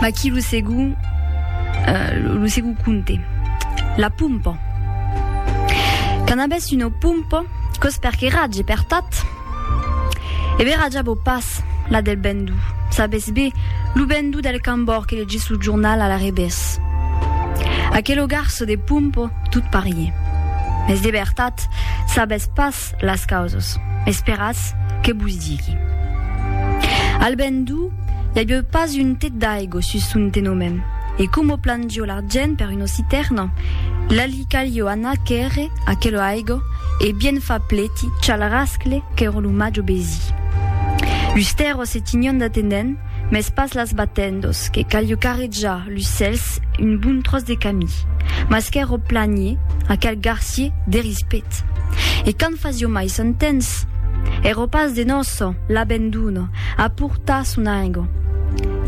Aquí lo segon, uh, lo segon conte. La pompa. Quand abès una pompa, cos per que ratge per tat? E bé ratja bo pas la del bendou. Sabes bé, lo bendou del cambor que legis lo jornal a la revés. Aquelo garço de pompa, tot parier. Mes de vertat, sabes pas Tot las causas, esperatz que vos digui. Al ben du, i avieu pas un tet d'aigo sus son tenomen, e como plangió l'argent per una citerna, la li calió anar quèrre aquela aigo e bien far pleti chal rascle qu'èra lo màjo besi. Lus tèrros se tinion d'atenent, mès pas las batendos, que calió carrejar Lu cèls, un bon tròç de camí. Mas qu'èro planier, aquel garcier, de rispet. E quand fasio mai sant temps. Èro pas de nòço, l'abenduna, a portar son aingo.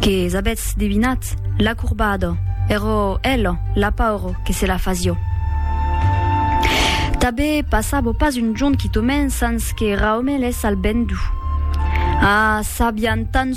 Que s'abetz devinat, l'acorbado, èro elo, l'apauro, que se la fasio. Tabe passavo pas un jorn quitomen sans que raumelès al bendu. Ah, s'abian tant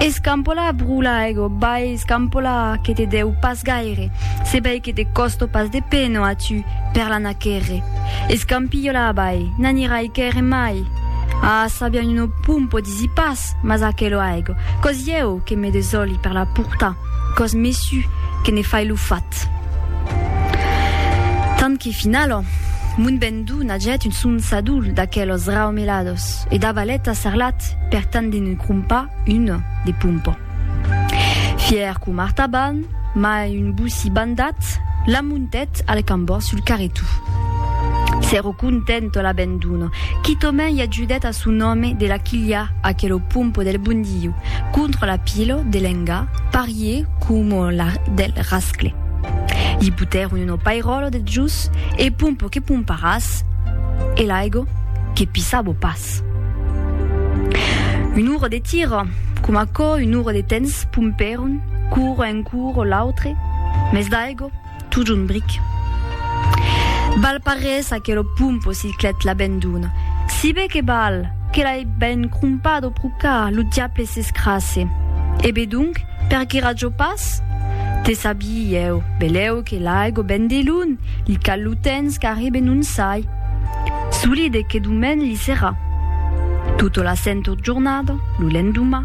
Escampola a brula ego, vai escampola que te deu pas gaire, se vei que te costo pas de peno a tu per l'anar quèrre. Escampilhola avall, n'anirai quèrre mai. Ah, sabian un o pumpo disi pas, mas aquelo ego, cos ieu que me desoli per la portar, cos mesu que ne fai lo fat. Tant que finalo, mon ben. Donagèt un son sadol d'aquelos raumelados e davalèt a Sarlat per tant de ne crompar una de pompa. Fièr com Artaban, mai un boci bandat, la montèt al cambor sul carretou. S'èro content o la ben dona, quitòmen i ajudèt a son òme de la quilhar aquelo pompa del Bondiu contra la pilo de l'enga, pariá. Ié coma la del rascle. Li putèron un opairòlo de jus e pompo que pomparàs e l'aigo que pissabo pas. Un uro de tiro, coma aquò un uro de tens pompèron curo en curo l'autre, mès d'aigo Totjorn bric. Val pas res aquelo pumpo si clet la ben dona. Si be que val, que l'ai ben crompat o procat, lo diable s'escrasse. E be donc, per que rajo pas? Te sabie ieu, beleu que l'aigo ben de lun, li cal lo tens qu'arri be non sai. Solide que domen li serà. Tota la sento jornada, lo lendoma,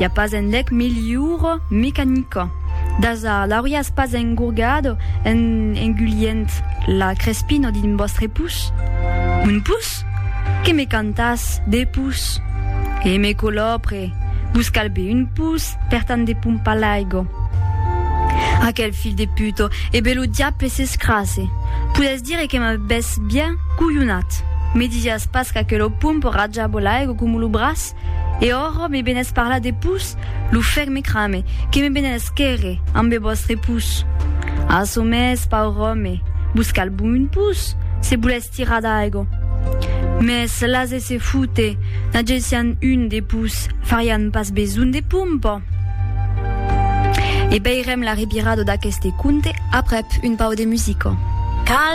I a pas enlèc milhor mecanica. Dasa, l'auríatz pas engourgat en engulhent la crespina d'un vòstre pus? Un pus? Que me cantàs de pus? E me colòpre, vos cal be un pus per tant de pompar l'aiga. Aquel filh de puta, e be lo diable s'escrasse! Podètz dire que m'avètz bien colhonat. Me disiatz pas qu'aquela pompa rajava l'aiga coma lo braç? E ora me benés parlar de pus, lo fèr me crame, que me benés quèrre, ambe vòstre pus. A çò mès, paur òme, vos cal bon un pus, se volètz tirar d'aigo. Mès lase se foute, n'agessián un de pus, farián pas besonh de pompa. E veirem la revirada d'aqueste conte aprèp un pauc de musica. Cal